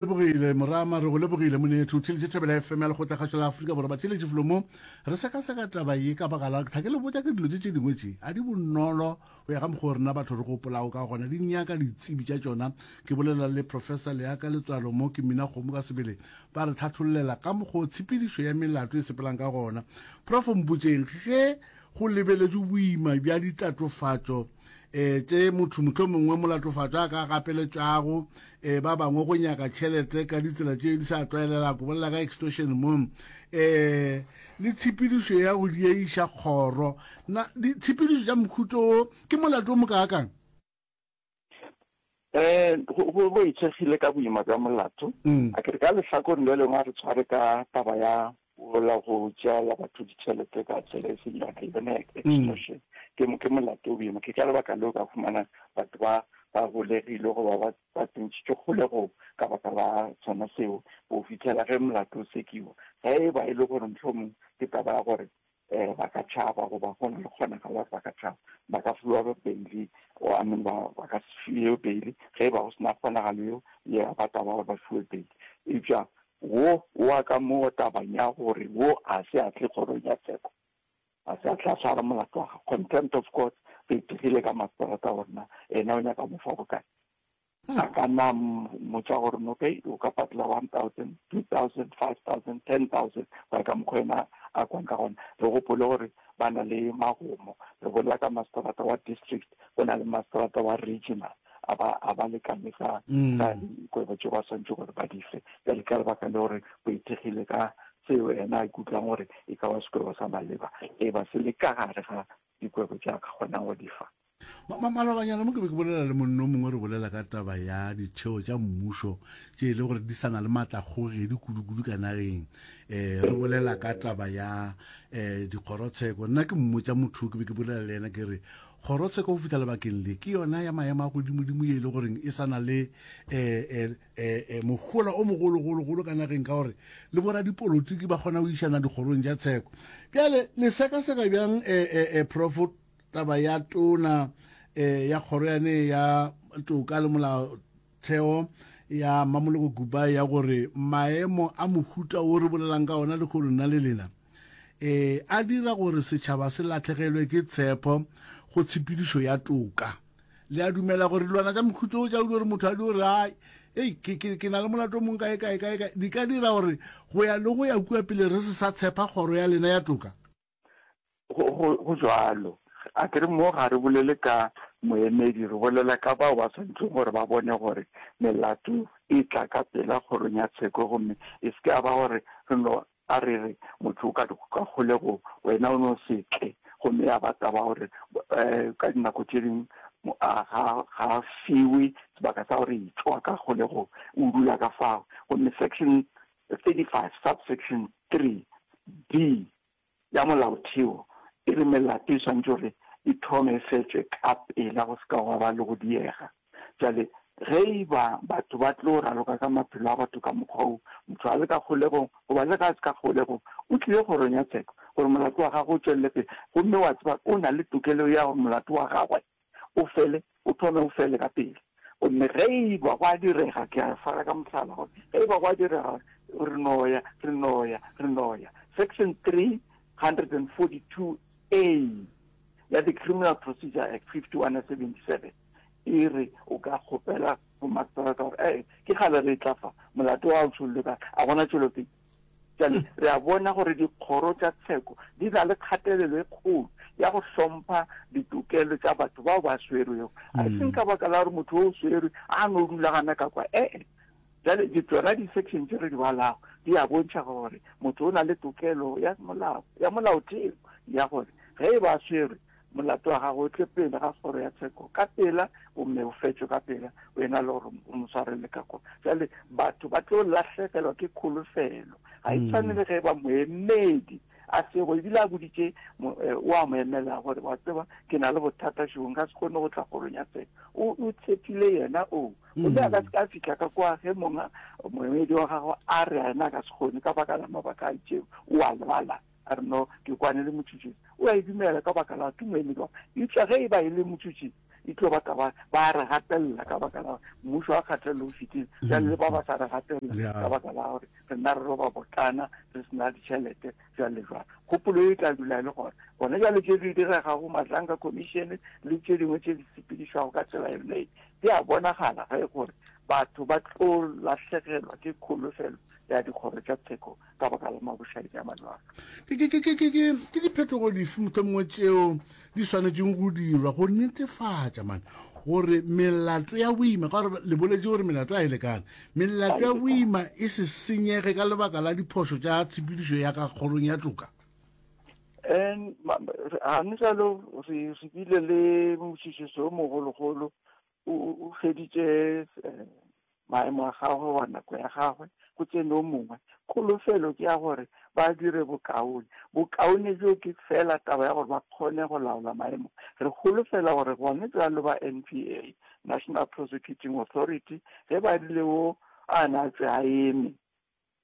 lebogile morama re go lebogile monetho o theletše thabela fm ya lekgotlakgašo la aforika borwa batheletše felo mo re sekaseka taba ye ka baka la tlhake le botja ke dilo tše tše dingwe tše a di bonolo go ya ka mokgwa o rena batho re gopolago ka gona di nyaka ditsebi tša tšona ke bolela le professor leaka letswalo mo ke mina kgomo ka sebele ba re tlhathollela ka mokgwa o tshepedišo ya melato e sepelang ka gona prof mpotšeng ge go lebeletšwe boima bja ditatofatšo e tše motho motho mongwe wa molatofatšo a ka gapeletšago e ba bangwe go nyaka tšhelete ka ditsela tše di sa tlwaelela go bolela ka extortion mo e le tshepedišo ya go dieiša kgoro na ditshepedišo tša mokhuto wo ke molato o mokaakang Go go itshegile ka boima bja molato. A ke re ka lehlakoreng le lengwe a re tshware ka taba ya la go tšeela batho ditšhelete ka tsela e seng yona yone extortion ke mo ke molato o boima. Ke ka lebaka leo ka fumana batho ba ba golegile goba ba ba tsentšitšwe kgolegong ka baka la sona seo go fitlhela ge molato o sekiwa. Ge e ba e le gore mohlomong ke taba ya gore eh, ba ka tšhaba goba go na le kgonagalo gore ba ka tšhaba ba ka fiwa beili I mean ba ba ka se fiwe beili ge e ba go sena kgonagalo eo ye ba taba gore ba fiwe beili eupša wo wa ka moo tabang ya gore wo a se a tle kgorong ya tsheko a se a tla tshwara molato wa gago contempt of court re e dirile ka masterata gorena ena o nyaka mo fa bokae A ka na a mmotša gore, No, okay, o ka patela one thousand, two thousand, five thousand, ten thousand, go ya ka mokgwa yena a kwang ka gona. Re gopole gore ba na le magomo. Re bolela ka masterata wa district, go na le masterata wa regional. A ba, a ba lekane ka, ka dikwebo tše ba swanetše gore ba di fe. Bjale ka lebaka le gore go ithekgile ka seo yena a ikutlwang gore e ka ba sekwebo sa maleba, e ba se le ka gare ga dikwebo tše a ka kgonang go di fa. Malobanyana mo ke be ke bolela le monno mongwe re bolela ka taba ya ditheo tša mmušo tše e le gore di sana le maatlakgogedi kudu-kudu ka nageng um re bolela ka taba ya um dikgorotsheko nna ke mmotsa motho ke be ke bolela le yena ke re kgorotsheko go fitlha lebakeng le ke yona ya maemo a godimodimo ye e le goreng e sana le um um mogola o mogologologolo ka nageng ka gore le boradipolotiki ba kgona go išana dikgorong tša tsheko bjale le sekaseka bjang um profo Taba ya tona e, ya kgoro yane ya toka le molaotheo ya Mamoloko Gubai ya gore maemo a mohuta o re bolelang ka ona le go nna le lena e, a dira gore setšhaba se latlhegelwe ke tshepo go tshepedišo ya toka. Le a dumela gore dilwana tša mohuta o tšaudi gore motho a di gore ai ei ke, ke, ke na le molato mong kae kae kae kae di ka dira gore go ya le go ya kua pele re se sa tshepa kgoro ya lena ya toka? go, go, go jalo a ke re mo ga re bolele ka moemedi re bolela ka bao ba swanetseng gore ba bone gore melato e tla ka pela kgorong ya tsheko gomme e se ka ba gore re no a re re motho o ka ka kgolego wena o no setle gomme ya ba taba gore um ka dinako tse dingwe ga fiwe sebaka sa gore itswa ka kgolego o dula ka fao gomme section 35, subsection, 3, di, ya Molaotheo e re melato e swanetše gore e thome e fetšwe ka pela go se ka gwa ba le go diega. Bjale ge e ba batho ba tlo raloka ka maphelo a batho ka mokgwa wo, motho a le ka kgolegong goba le ge a se ka kgolegong, o tlile kgorong ya tsheko gore molato wa gagwe o tšwelele pele gomme wa tseba o na le tokelo ya gore molato wa gagwe o fele, o thome o fele ka pele. Gomme ge e ba go a direga, ke a fana ka mohlala gore ge e ba go a direga, re no ya, re no ya, re no ya. Section 342A ya the Criminal Procedure Act, 51 ya 77, e re o ka kgopela go Magistrata gore, Ee, ke kgale re e tla fa, molato wa hao tšhollwe ka, a gona tšwelopele. Bjale re a bona gore dikgoro tša tsheko di na le kgatelelo e kgolo ya go hlompha ditokelo tša batho bao ba swerwego a e seng ka baka la gore motho o o swerwe a no dula gana ka kwa ee bjale di tsona di-section tše re di balago di a bontšha gore motho o na le tokelo ya molao ya molaotheo ya gore ge e ba swerwe Molato wa gago o tle pele ga kgoro ya tsheko ka pela, gomme o fetšwe ka pela, o ena le gore o mo swarele ka kua. Bjale batho ba tlo lahlegelwa ke kholofelo. Ga e tshwane le ge e ba moemedi a sego, ebile a boditše eh, o a mo emela gore, wa tseba, ke na le bothata šego, nka se kgone go tla kgorong ya tsheko. O tshepile yena oo, gomme a ka se ka fitlha ka kua ge monga moemedi wa gago a re a ena a ka se kgone ka baka la mabaka a itšego, o a lebala. A re, No, ke kwane le motšotši. O a e dumela ka baka la tumo e medwa. Eupša ge e ba e le motšotši, e tlo ba taba, ba re gatelela ka baka la mmušo wa kgatelelo o fetile, bjale le ba ba sa re gatelela ka baka la gore rena re roba botlana, re se na ditšhelete, jwalo le jwalo. Kgopolo e tla dula e le gona. Gona bjale tše di diregago, Mahlanka Commission le tše dingwe tše di sepedišwago ka tsela e mei, di a bonagala ge gore batho ba tlo lahlegelwa ke kholofelo ya dikgoro tša tsheko ka baka la mabošadi a malwala. Ke diphetogo dife mohlomongwe tšeo di swanetšeng go dirwa go netefatša mane gore melato ya boima ka gore le boletše gore melato a e lekane melato ya boima e se senyege ka lebaka la diphošo tša tshepedišo ya ka kgorong ya toka gane jalo re bile le mošišiso o mogologolo O, o, o feditše eh, maemo a gagwe wa nako ya gagwe go tsene o mongwe kholofelo ke ya gore ba dire bokaone bokaone bjo ke fela taba ya gore ba kgone go laola maemo re kholofela gore gone jalo ba n p a national prosecuting authority ge ba rile o a na tse a eme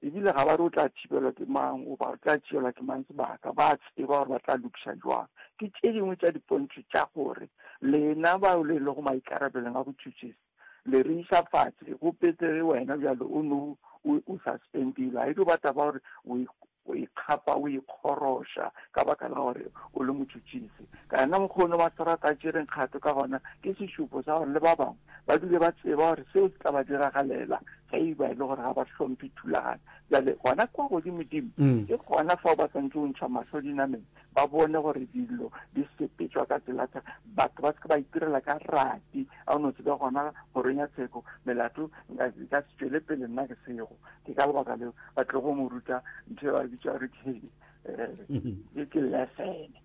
Ebile ga ba re o tla thibelwa ke mang goba o tla tšeelwa ke mang sebaka, ba a tseba gore ba tla lokiša jwang. Ke tše dingwe tša dipontšho tša gore lena bao le lego maikarabelong a botšhotšhisi le re iša fase, go pete ge wena bjale o no o, o suspendilwe. Ga e dio ba taba ya gore o e, o e kgapa, o e kgoroša ka baka la gore o le motšhotšhisi. Ka yena mokgwa ono Maseterata a tšereng kgato ka gona, ke sešupo sa gore le ba bangwe ba dule ba tseba gore seo se tla ba diragalela ge e ba e le gore ga ba hlomphe thulaganyo jale gona kwa godimodimo mm. ke gona fao ba tshwanetse go ntšha mahlo dinameng ba bone gore dilo di sepetswa ka tsela tsa batho ba seke ba itirela ka rati a o ne o tsebe gona goreng ya tsheko melato ka se tswele pele nna ke sego ke ka lebaka leo ba tle go mo ruta ntho e ba bitsa gore ke eh, mm-hmm. lesene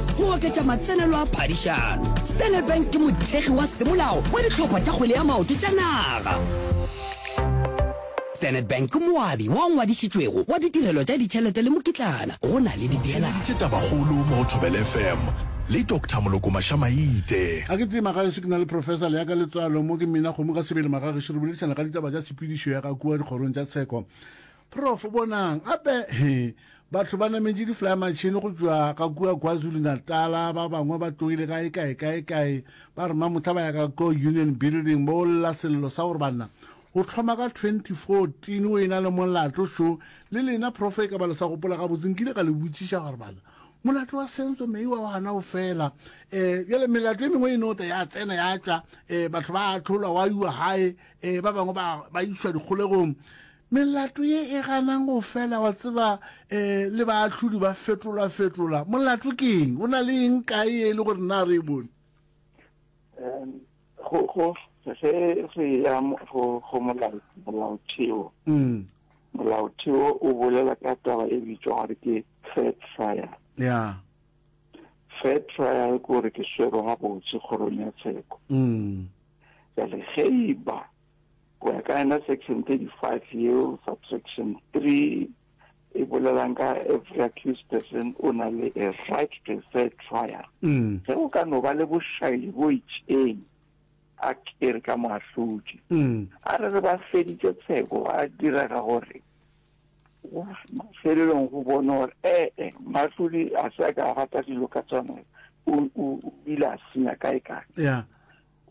go oketša matsenelo a phadišano. Standard Bank ke mothekgi wa semolao wa dihlopha tša kgwele ya maoto tša naga. Standard Bank ke moabi wa ngwadišitšwego wa ditirelo tša ditšhelete le mokitlana go na le dipeelano. Theleditše tabakgolo mo go Thobela FM le Doctor Moloko Mashamaite. Ga ke tima gaešo ke na le Professor Leaka Letswalo mo ke mmina kgomo ka sebele magagešu re boledišana ka ditaba tša tshepedišo ya ga kua dikgorong tša tsheko. Prof bonang a be he batho ba nametše diflayamatšhini go tšwa ka kua kwazulu-natala ba bangwe ba tlogile ka ekaekaekae ba re mamohla ba ya ka ko union building ba olela sello sa gore banna go tlhoma ka 2014 o e na le molato šo le lena profe e ka ba le sa gopola gabotse nkile ka le botšiša gore bana molato wa sentswe meiwa wa gana o fela um bjale melato e mengwe e nota ya tsena ya tšwa um batho ba atlholwa wa iwa gae um ba bangwe ba išwa dikgolegong Melato ye e ganang go fela, wa tseba, e, le baahlodi ba fetolafetola. Molato ke eng? Go na le eng kae ye e le gore na re e bone? Em, go, go, ge re ya mo- go, go molao, molaotheo, Mm, molaotheo o bolela ka taba e bitšwa gore ke fair trial. ya, Fair trial ke gore ke swero gabotse kgorong ya tsheko. mm, Jale ge e ba Go ya ka yona section 35 yeo subtraction 3 e bolelang ka every accused person o na le a right to a fair trial mm. ge o ka no ba le bošaili bo itšeng a kere ka moahlodi mm. a re re ba feditše tsheko a direga gore mafelelong go bone gore ee eh, eh, mahlodi a se a ka gata dilo ka tsone o ile a senya kae kae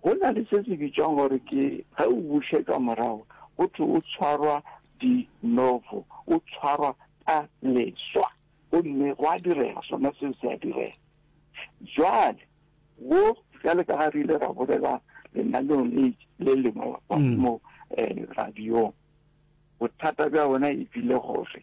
Go na le se se bitšwang gore ke ge o bušetšwa morago, go thwe o tshwarwa de novo, o tshwarwa ka leswa. Gomme gwa direga, sona seo se a direga. Bjale, bo, bjale ka ga re ile ra bolela lenaneong le, le lengwe la kwa mm. mo eh, radiong, bothata bja bona e bile gore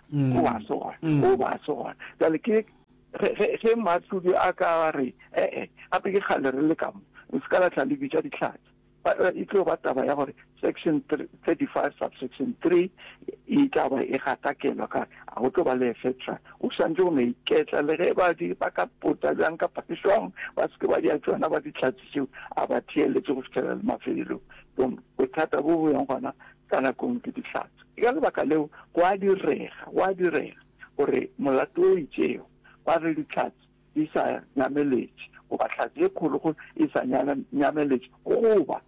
mm. o ba tsona mm. o ba tsona jale ke ge matlodi a ka re ee gape ke kgale re le kamo re se ka latlha le bitša ditlhatsi eh, e tlo ba taba ya gore section 35 subsection 3 e taba e gatakelwa ka a go tlo ba le efetra o swantse go no iketla le ge ba di ba ka pota bjang ka pakiswang ba seke ba dia tsona ba ditlhatsi tseo a ba theeletse go fitlhela le mafelelong bothata bo bo yang gona ka nakong ke ditlhatsi Ke ka lebaka leo go a direga, go a direga gore molato o itšego wa ge Dihlatse di sa nyameletše goba Hlatse e Kgologolo e sa nyameletše goba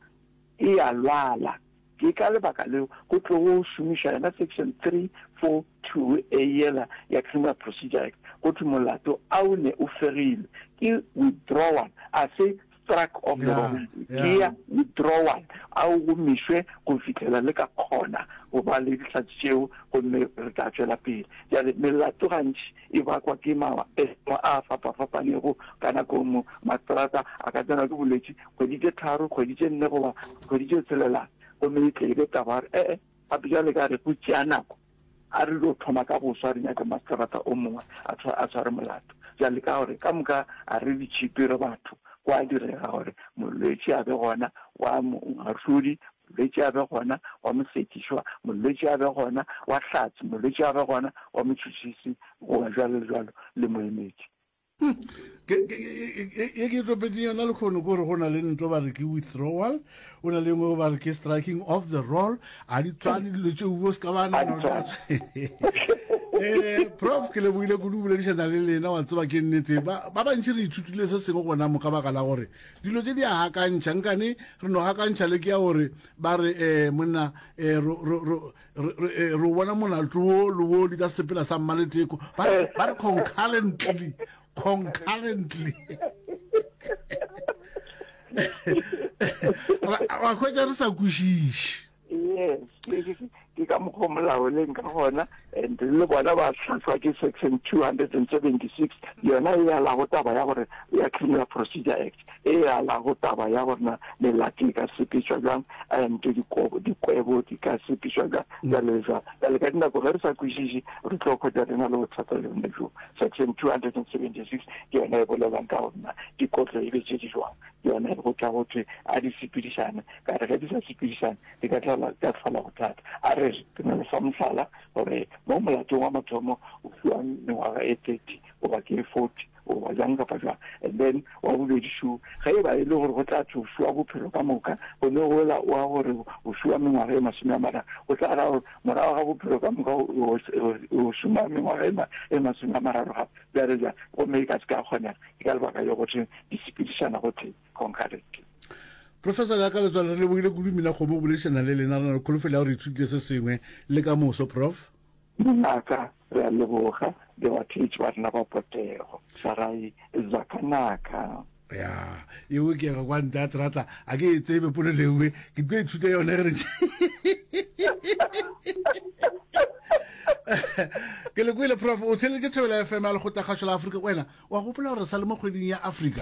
e a lwala, ke ka lebaka leo go tlogo šomišwa yona Section 342A yela ya Criminal Procedure Act go thwe molato a o ne o fegilwe ke withdrawal, a se struck of the wrong gear, withdrawal, a o gomišwe go fihlela le ka kgona go ba le dihlatse tšeo gomme re tla tšwela pele. Bjale, melato gantši e bakwa ke maemo a a fapafapanego ka nako nngwe. Mastrata a ka tsenwa ke bolwetši kgwedi tše tharo, kgwedi tše nne goba kgwedi tše tshelelana, gomme e tle e be taba ya gore, E-e, gape bjale ka re go tšea nako. A re dio thoma ka boswa re nyake masterata o mongwe a tshwa a tshware molato. Bjale ka gore ka moka a re di tšhipi re batho, go a direga gore molwetši a be gona wa moahlodi, molwetši a be gona wa mosekišwa, molwetši a be gona wa hlatsi, molwetši a be gona wa motšhotšhisi, goba jwalo le jwalo, le moemedi. e ke topetseng yona le kgono kore go na le ntlo ba re ke withdrawal o na le ngwe ba re ke striking off the roll a di tswane dilo tse uo se ka ba nanona um prof ke lebogile kudu o boledišana le lena wa tseba ke nnete ba bantši re ithutile se sengwe gona mo ka baka la gore dilo tse di a gakantšha nkane re no gakantšha le ke ya gore ba re um monna um re re- eh, re o bona molato wo le wo di ka sepela sa mmaleteko ba re- ba re concurrently concurrently Ra- wa hwetša re sa kwešiše yes ke- ke- ke- ke ka mokgwa o molao leng ka gona and le bona ba tlhatlhwa ke section 276 yona e alago taba ya gore ya criminal procedure act e alago taba ya gore na melati e ka sepetšwa bjang and dikwebo di ka sepetšwa bjang jalo le jalo jale ka dinako ge re sa kwešiše re tlo kgwetsa re na le bothata le bone jo section two hundred and seventy six ke yona e bolelang ka gore na dikotlo e be tše di jwang ke yona go tla go thwe a di sepedišane ka re ge di sa sepedišane di ka tlala ka tlhola bothata a re re ke na le fa mohlala gore mo molatong wa mathomo o fiwang mengwaga e thirty goba ke e forty goba jang kapa jang. And then wa bobedi šo, ge e ba e le gore go tla thwe o fiwa bophelo ka moka, gone ola oa gore o fiwa mengwaga e masome a mararo, go tla ra gore morago ga bophelo ka moka o šoma mengwaga e masome a mararo gape, bjale bjang. Gomme e ka se ka kgonega, ke ka lebaka leo go thweng di sepedišana gotee, concurrently. Professor, jaaka le tswalo, re lebogile kudu. Mmina Kgomo go boledišana le lena. Re na le kholofelo ya gore re ithutile se sengwe le ka moso, Prof. Mongaka, re a leboga, le batheetši ba rena ba potego. Sarai, Za ka naka. Ya, e okega kwa ntle a trata, a ke e tsebe polelo e nngwe, ke tlo ithuta yone ge re ke le kwele prof o theletše thobela fm ya lekgotakgašo la afrika wena wa gopola gore sa le mo kgweding ya afrika